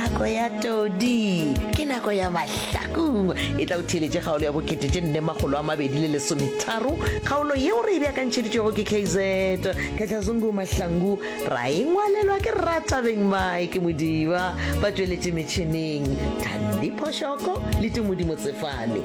Nako ya todi ke nako ya mahlakung e tla o theeletše kgaolo ya bokete tše nne makgolo a mabedi le lesometharo kgaolo yeo re e beakantšheditšwego ke kz kgatlhazungu mahlangu ra e ngwalelwa ke ratabeng mike modiba ba tšweletše metšhineng thandi phošoko le tumodimo tsefane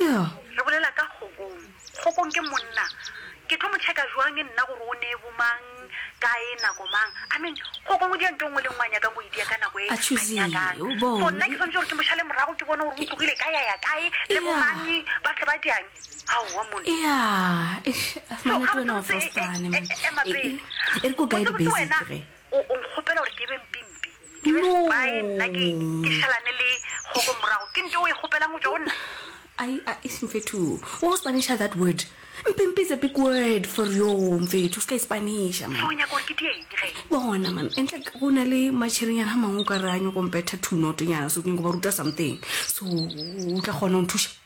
Re bolela ka kgokong. Kgokong ke monna. Ke tlo mo checka jwang nna gore o nee bomang, kae, nako mang? I mean, kgokong o dia nto e nngwe le e nngwe a nyakang go e dia ka nako e a nyakang. So nna ke swanetše gore ke mo šale morago ke bone gore o tlogile kae a ya kae le bomang ba tle ba diang? Aowa monna. So gabotsebotse, ema pele. Botsebotse wena o nkgopela gore ke be mpimpi? Bye, nna ke, ke šalane le kgogo morago. Ke nto o e kgopelang go tšwa go nna? Ai, ai, mfethu, wa o Spanisha that word. Mpimpi is a big word for yo, mfethu, o se ka e Spanisha, man. So o nyaka gore ke die eng ge? Bona, man, and like go na le matšhirinyana a mangwe o ka re a nyoko mpetha two note-nyana, so ke nyoko ba ruta something. So o tla kgona go nthuša?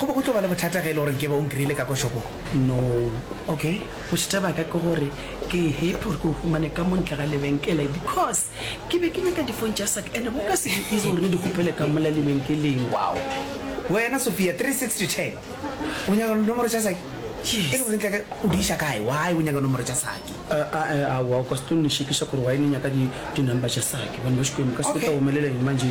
Go be go tlo ba le bothata ge e le gore nkebe o nkreile ka kwa shopong. No. Ok, bothata bja ka ke gore ke happy gore ke go humane ka mo ntle ga lebenkele because ke be ke nyaka difone tša saka and bo ka se di easy gore re di kgopele ka mola lebenkeleng. Wow. Wena Sophia, three six to ten, o nyaka dinomoro tša sake? Yes. E le gore ntle ka o di iša kae? Why o nyaka nomoro tša sake? Aowa, o ka se tlo nešekiša gore why ne nyaka di di number tša sake. Bana ba Xikwembu, ka se ke tla omelela eng manje?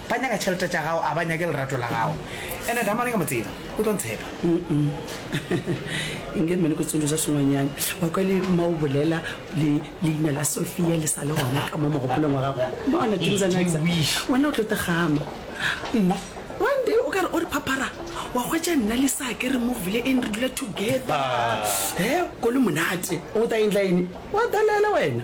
Ba nyaka tšhelete tša gago, a ba nyake lerato la gago. Ene Damane ke a mo tseba, o tlo ntshepa. Inge mme le ko tsološa sengwenyane. Wa kwa le ma o bolela le leina la Sophia le sa le gona ka mo mogopolong wa gago. Bona things are nice. Wena o tlo te gama. Nna one day o ka re o re phaphara wa hwetša nna le sa ke re move le eng re dula together. He go le monate. O ta endla eng? Wa dalela wena.